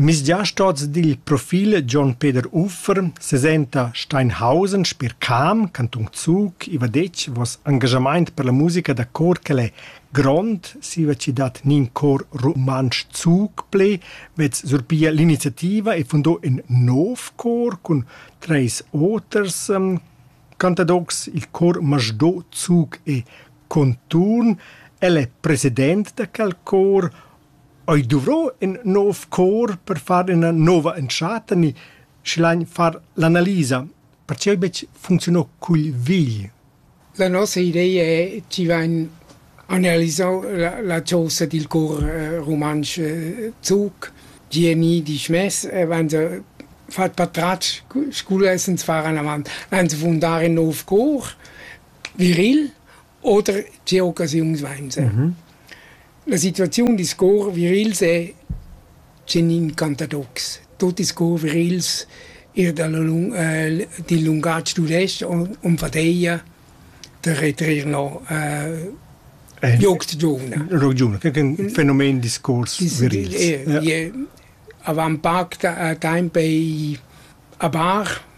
Misgiastoz dil profil Gion Peder Uffer sesenta Steinhausen sper Cam, cantun Zug, i va detg vos engaschamaint per la musica da cor ch'el è grond, siva chi dat nin cor rumantsch Zug ple, vez surpia l'iniziativa e fundò ün nov cor cun treis oters cantadocs, il Chor Masdó Zug e Conturn el è president da quel cor, ei duvro in nov cor per far ina nova entschatta ni schlein far l'analisa, pertgei betg funcziunò cugl vegl. La nossa idea è, ci vain analisau la, la chosa dil cor eh, rumantsch eh, Zug. GMI disch mess, eh, wenn sie fat patratsch, sculle essens fahren avant, wenn sie fundar in nov cor. viril oder tge occasiuns vainsa. La situaziun discuorr virils è tgenin cantadocs. Tot discuorr virils ir dalla lung- ehm dil lungatg tudestg onfadeia da retrer no ehm jocs giuvna. Rock giuvna, che è un fenomen discuors virils. Ie avant pac temp ei a Bar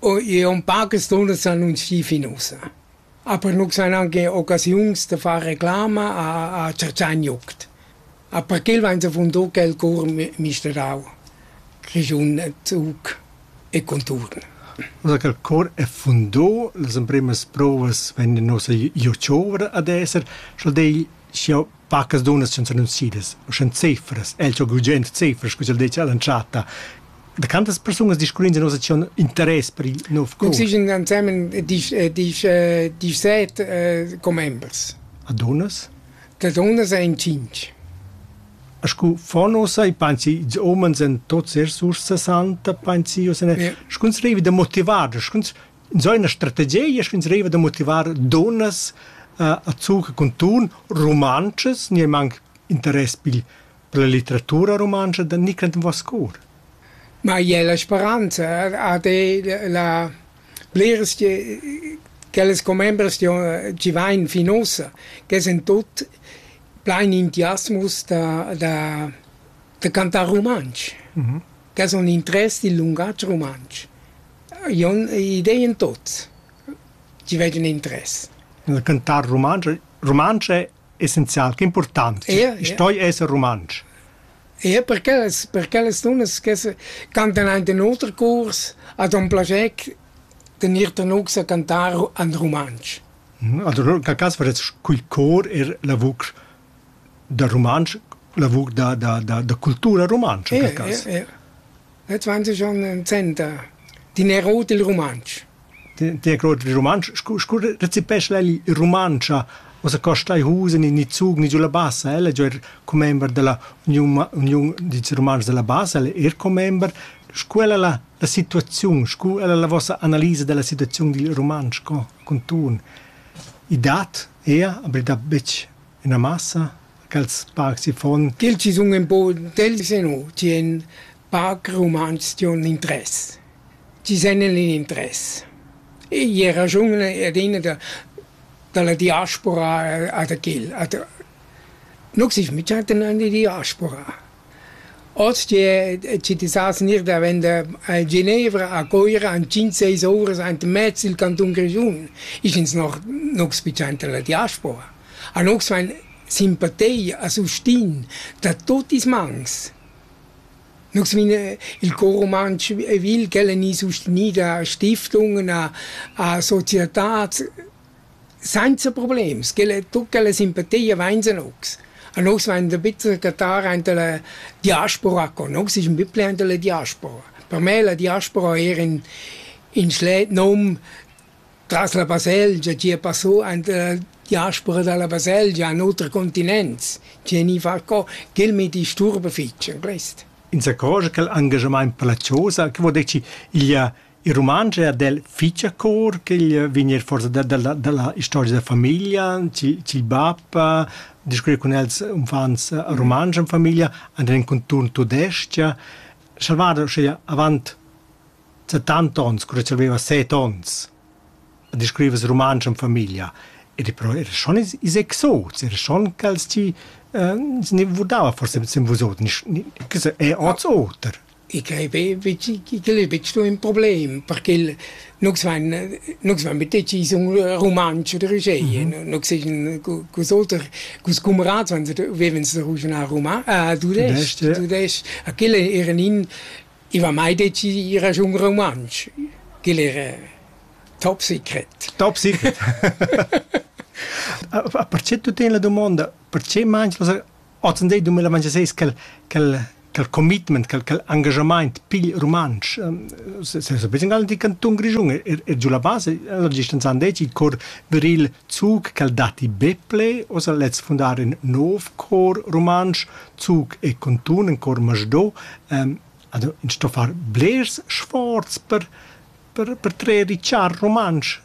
O i è un paques dunnas annunzchì fin ussa, aber nus hain anche occasiuns da far reclama a a Cercagnuoct. A perquel vain zavundà quel cour misterau, Grischun Zug e conturn. Da quel cor è fundà, las emprimas provas vegnan nossa giovra ad esser, scha'l dei scha Pacas dunnas sun s'annunzidas, uschè cefras, el cho gugent cefras, scu ch'el dettia all'entschatta. Da quantas persunas discurrins in nossa acziun interess per il nov cours? Existan ensemen disch, disch, disch set äh, commembers. A dunnas? Da dunnas ein cinc. A scu fon ossa i pensi, ils omens en tots er sursa santa, pensi, o se ne, yeah. scuns revi da motivar, scuns Ins ha ina strategia sch'ins deriva da motivar dunnas uh, a zucher cun tun rumantschas, niemanc interess pil per la litteratura rumantscha da Nicland Vascour. Ma è la speranza ha la bleres che quellas commembers ci vain fin ossa, che sind tot plein entusiasmus da, da, da cantar romansch. Mm -hmm. Che sono interess del lungaggio romansch. Jon idei en tut. Tgi vegn cun interess? Il cantar rumantsch, rumantsch è essenzial, che impurtant. Ja, ja. Stoi esser rumantsch. Ja, perché las, perché las dunnas che se cantan ein in oter curs hat un plascher den ir tanux a cantar an rumantsch. Also in quel cas fares cul cor er la vucr da rumantsch, lavur da, da, da, da cultura rumantscha per caso. Eh, eh, eh. 20 anni 60 din rot il rumantsch. Din rot il rumantsch, scu, scu recipesce lei il rumancia cosa costa i husen in i zug ni giulla bassa elle giu er commember della union union di romanz della bassa elle er commember scu ella la la situazione scu ella la vostra analisa della situazione dil romansch co Cuntuorn. I dat eir, aber da betg üna massa cha'ls parcs i fon. Til chi sun ün po intelligents e no, chi en parc rumantsch diun interess, chi sen in interess. I ha raschun adina da da la diaspora a da quel. Nu gsich, mi chattan an die Diaspora. Oz che chi ti sas gnir davent da Genevra a Coira in cinc seis ouras aint in mez il cantun Grischun, isch ins noch nu spicciainta la diaspora. A nus fain simpatia a sustin da tuot ils mans. Nus vin il Cor rumantsch vil ch'el ha gnü sustenì da stiftungen a a societats Sainza problems, ch'ella e tut ch'ella simpatia vainsan ocs. A nus vain da bitser cattar aint da la diaspora co nus ais ün bit plü aint da la diaspora. Per me la diaspora eir ün ün schlet nom tras la baselgia, chi a passò aint da la diaspora da la baselgia an oter continents, chi gni far co, ch'el mi disturba fich in quist. Insacò cha quel angajamaint per la chosa, che vuol dir chi igl ha Il rumantsch è adel fich a cor ch'igl vegn eir forsa da, da la, da la istorgia da famiglia, ch'il, ch'il bap a discurrer cun els uffants rumantsch en famiglia, andar in conturn tudestg, salvada uschea avant settanta ons, cura ch'el aveva set ons, a discurrevas rumantsch en famiglia. Ed però era schon is, is exots, era schon ch'els ti eh, se ne vurdava forse sem vus oter, nis- ni- che so, è oz oter. I quai igl ei betg sto ün problem perché nus vain nus vain be decis ün rumantsch oder uscheie. Nus seigien culs oter culs cumrats vevens da ruschnar tudesc tudesc a quel era nin i va mai decis ir giù un rumantsch. Quel era top secret. Top secret. Perché tu teni la domanda? Perché mangi Ozendi 2026 quel, quel, quel commitment, quel, quel engagement pigl rumantsch. Sesapeis ingal di cantun Grischun è, è giù la base, allora distanzian deci il cor viril Zug, quel dati Beple, osa lez fundar in nov cor rumantsch, Zug e Contun, in cor Masdo, um, also in sto far blers sforz per, per, per trer richar rumantsch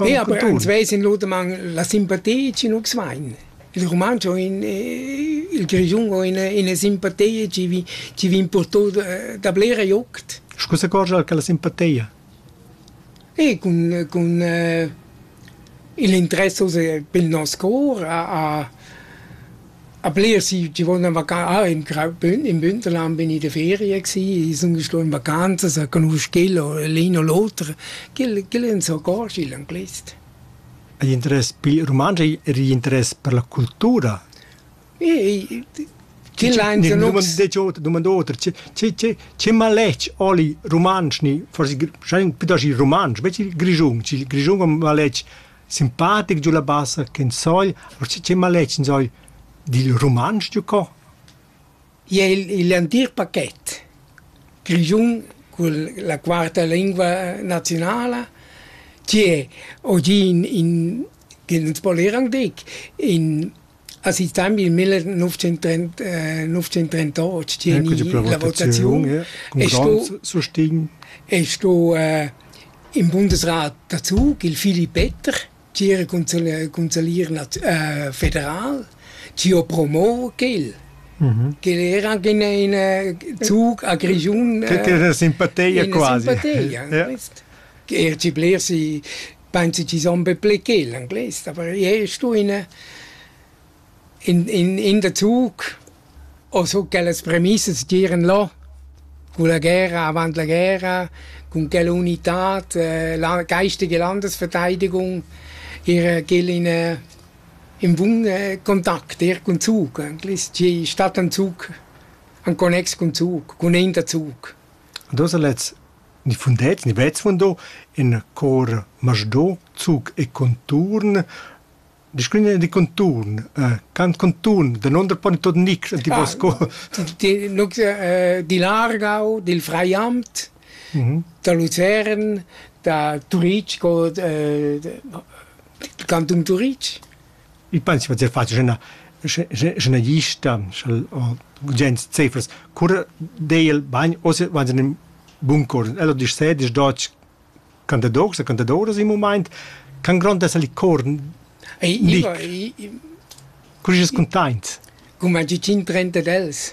Ja, aber an zwei sind lutemann la simpatia chi nus vain. Il rumantsch o in il grischun o ina ina simpatia chi vi chi vi importut da blera juct. Scu s'accorgia che la simpatia? E cun cun il interesse pel nos cor a A blers i vonna vacà in crau bün. In Bünterland bin i da feria gsi, i sun sto in vacanzas a conosc ch'el o l'ün o l'oter. Ch'el ch'el ün s'accordscha i'l anglais. Hai interess pil rumantsch e l'interess per la cultura? I ch'el ha ingenus. Dumanda oter, che maletg holi rumantsch ni forsi schai un püt aschi rumantsch, vess il Grischun, il Grischun a maletg simpatic giu la bassa ch'in sogl, uschè che maletg in sogl dil rumantsch giu co? I ei igl entir pachet grischun cun la quarta lingua naziunala che oggi in, in che nus voleran dir in Ha si temps il 1938 la votaziun e sto e sto eh, in Bundesrat dazu il Philipp Peter tgira consalier eh, federal tio promo quel mhm. che era anche in eh, zug a Grigiun che era simpateia quasi ja. che er ci bler si pensi chi son be pli che l'anglais, aber jede Stunde in, in, in der Zug ho so quellas premissas giren là con la guerra avant la guerra, con quella unitad, eh, la geistige Landesverteidigung, ihr gel in, äh, in Wohn äh, Kontakt, ihr con Zug, eigentlich, ci statt ein Zug, ein connex con Zug, con in der Zug. Und du hast letzt ni fundet ni vez fundo in cor masdò, zuc e conturn. Discurrin di conturn, cant conturn, danunder poni tot nic, ti vos co. Nus dil Aargau, dil Freiamt, da Luzern, da Turitg, cantun Turitg. Il pens va dir fatg ina ina gista gens cefers cura deiel bagn oz va in bun cor ella dis sed dis dotg cantadoras e cantadoras in moment can grond essel il cor ni cur es containt cum a 30 dels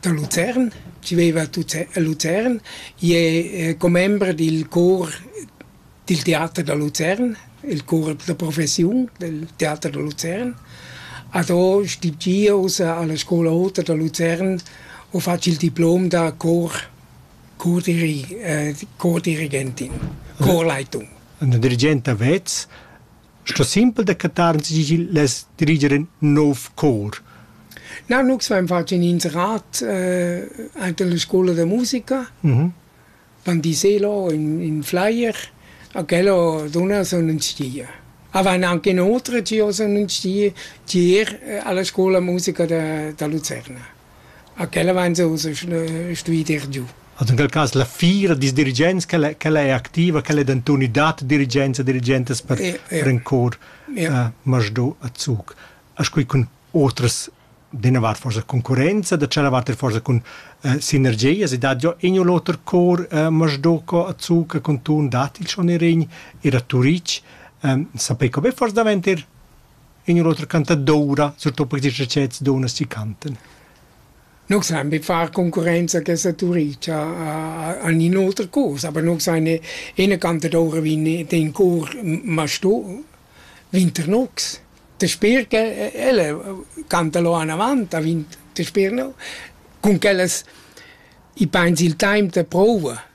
da Luzern, chi veiva a Luzern, i es commember dil cor dil teater da Luzern, il cor da professiun del teater da Luzern. A do stipendia ussa alla scoula ota da Luzern u fatsch il diplom da cor cordiri- cordirigentin, corleitung. Üna dirigenta vez Sto simpel decretar tg'igl less diriger in nov cor. Na, nu s'vain fat in inserat eh, aint alla scoula da musica. Mhm. Van diselo in, in flyer, a quello duna sun ün stia. A van anche inoltre, che io sun ün stia, tier eh, alla scoula musica da, da Lucerna. A quella vain jeu stui dir giu. Ad in quel cas la fiera dils dirigents quella quella è activa, quella è denton i dat dirigenza dirigentas per ja, ja. per in cor ja. uh, Masdó a Zug. As quei cun otras d'ina vart forsa concurenza, da tschella vart forsa cun uh, sinergias, e dat jo in o l'oter cor uh, Masdó co a Zug con tun dat il schon erin ir a Turic, um, sapei co be forse davent ir ignur oter canta doura, surtò per tes recets dona si canten. Non san be far concorrenza che saturicia a, a un'altra cosa, aber non san ne eine canta doura vin den cor ma sto vinternox. Te sper che elle canta lo an avant, a vint te sper no. Con quellas i paints il time te prova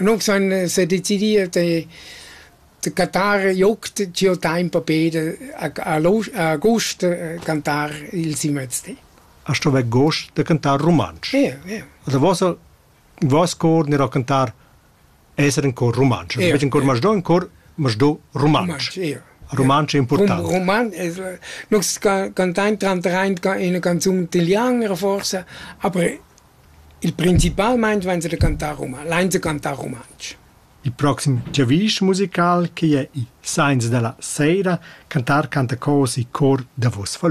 Annunc s'han s'ha decidiu da da cantar jucht giò temp a Peder a a l'os- a agost cantar il simezdi. A sto vair gost da cantar rumantsch. Ie ie. Also vossa voss cor gnarà cantar esser in cor rumantsch. Ie. Betg in cor masdò, in cor masdò rumantsch. Ie. Rumantsch è important. Rum- Roman, es, nus ca- cantain tranter in ca- ina canzun italiana forse, aber Il principalmein vain els da cantar roman, lain da cantar rumantsch. Il proxim giavisch musical che jai sainza da la seira cantar canta cos e cor da vos falun.